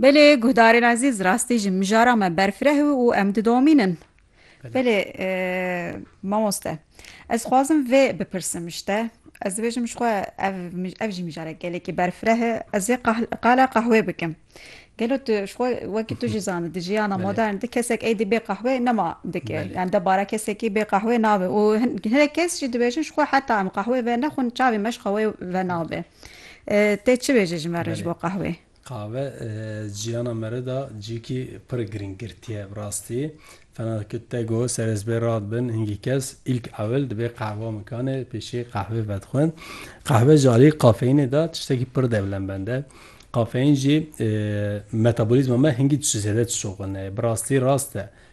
Belê guhdarên ezîz rastî ji mijara me berfireh û em didomînin. Belê e, mamoste ez xwazim vê bipirsim ji te. Ez dibêjim ji xwe ev ev jî mijare gelekî berfireh e ez ê qala qehwê bikim. Gelo tu ji xwe wekî tu jî zanî di jiyana modern di kesek êdî bê qehwê nema dike yani debara kesekî bê qehwê nabe û hinek kes jî dibêjin ji xwe heta em qehwê ve nexwin çavê me ji qehwê ve nabe. Tê çi bêje ji me re ji bo qahwê? Qahwe jiyana me re da cihekî pir girîng girtiye. Bi rastî fena dike te got ser ez bê rad bin hingî kes îlk ewil dibê qahwa mikanê pêşî qahwê vedixwin. Qahwe ji aliyê kafeyînê da tiştekî pir dewlembend e. Kafeyîn jî metabolîzma me hingî zêde dişoxine. Bi rastî rast e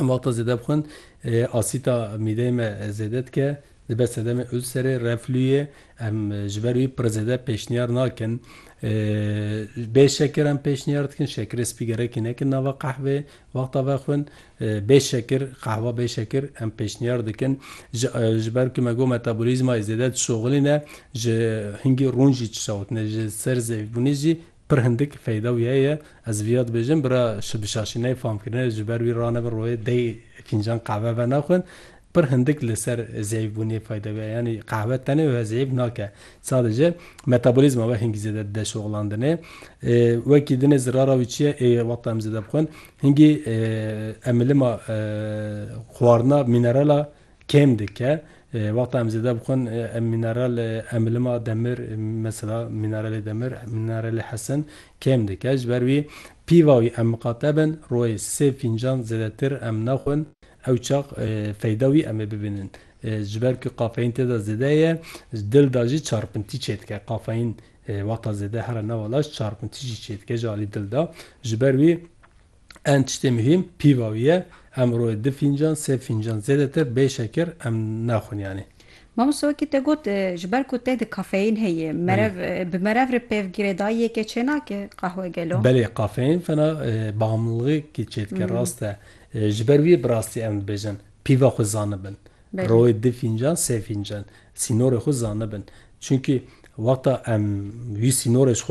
Em wexta zêde bixwin asîta mîdeyê me zêde dike, dibe sedemê ulserê, reflûyê. Em ji ber wî pir zêde pêşniyar nakin. Bê şekir em pêşniyar dikin, şekirê spî gerekî nekin nava qehveyê. Wexta vexwin bê şekir, qehwa bê şekir em pêşniyar dikin. Ji ji ber ku me got metabolîzmayê zêde dişoxilîne, ji hingî rûn jî çişawitine, ji ser zêfbûnê jî Pir hindik feyda wî heye. Ez vîya dibêjim, bira şi bişaşî ney fam kirine, ji ber wî ranebe royê dey fîncan qehve venexwin. Pir hindik li ser zeyfbûnê feyda wî heye. Yanî qehve tenê we zeyf nake. Sadece metabolîzma we hingî zêde dide şoxlandinê. Wekî dinê zirara wî çi ye? Ê wexta em zêde bixwin hingî emilima xwarina mînerala. kêm dike. Wexta em zêde bixwin em mîneral emilima demir mesela mîneralê demir, mîneralê hesin kêm dike. Ji ber wî pîva wî em miqate bin rojê sê fîncan zêdetir em nexwin ew çax feyda wî em ê bibînin. Ji ber ku kafeîn tê de zêde ye dil de jî çarpintî çêdike. Kafeîn wexta zêde here nava laş çarpintî jî çêdike ji alî dil de. Ji ber wî Em tiştê muhîm pîva wî ye. Em rojê du fîncan, sê fîncan zêdetir bê şekir em naxwin yanî. Mamoste wekî te got ji ber ku te di kafeyîn heye merev bi merev re pevgirê dayî yekê çênake qehwe gelo? Belê kafeyîn fena bamilixekî çêdike rast e. Ji ber wî bi rastî em dibêjin pîva xwe zanibin. Rojê du fîncan, sê fîncan sînorê xwe zanibin. Çunkî wexta em wî sînorê ji xwe re